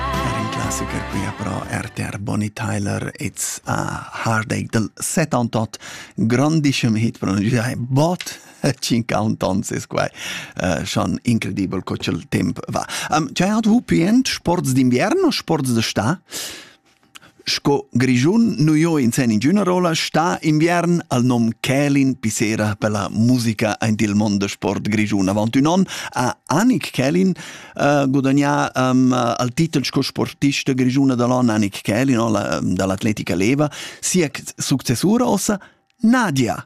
Er il classiker quia però RTR Bonnie Tyler It's a Heartache del 78 grandischem hit pronuncià bot 50 ans es quai uh, schon incredibel co ch'el temp va. Um, chay hat vu pient sports d'inviern o sports d'està? Sco Grischun nu jo in sen ingüna rolla sta inviern al nom Kälin Pissera per la musica aint il mond da sport grischun. Avant ün on ha Annik Kälin uh, gudagnà um, al titel sco sportista grischuna da l'on. Annik Kälin, la, da l'atletica leva, sia successura ossa Nadia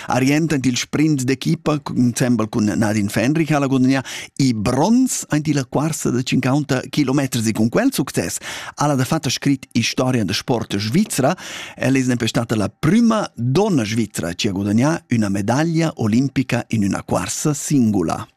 Arient aint il sprint d'equipa ensembel cun Nadine Fenrich ha la gudagnà e bronz aint la quarsa da 50 kilometers e cun quel success ha la da fatta scrit Historia da sport svizra. El es nempe stata la prima donna svizra chi ha gudagnà üna medaglia olimpica in üna quarsa singula.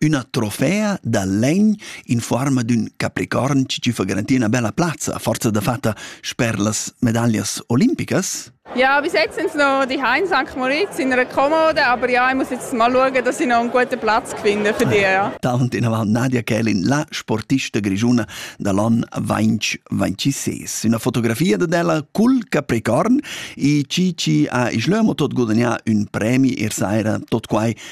üna trofea da legn in forma d'ün capricorn chi fa garantir üna bella plazza, forza da fatta sper las medaglias olimpicas? Ja, bis jetzt sind noch die in St. Moritz in einer Kommode, aber ja, ich muss jetzt mal schauen, dass ich noch einen guten Platz finde für die. Ja. Dauernd in avant Nadia Kelin, la sportista grigiuna da l'on 2026. Una fotografia d'ella cul Capricorn e chi chi ha islömo tot gudagnà un premi ir saira tot quai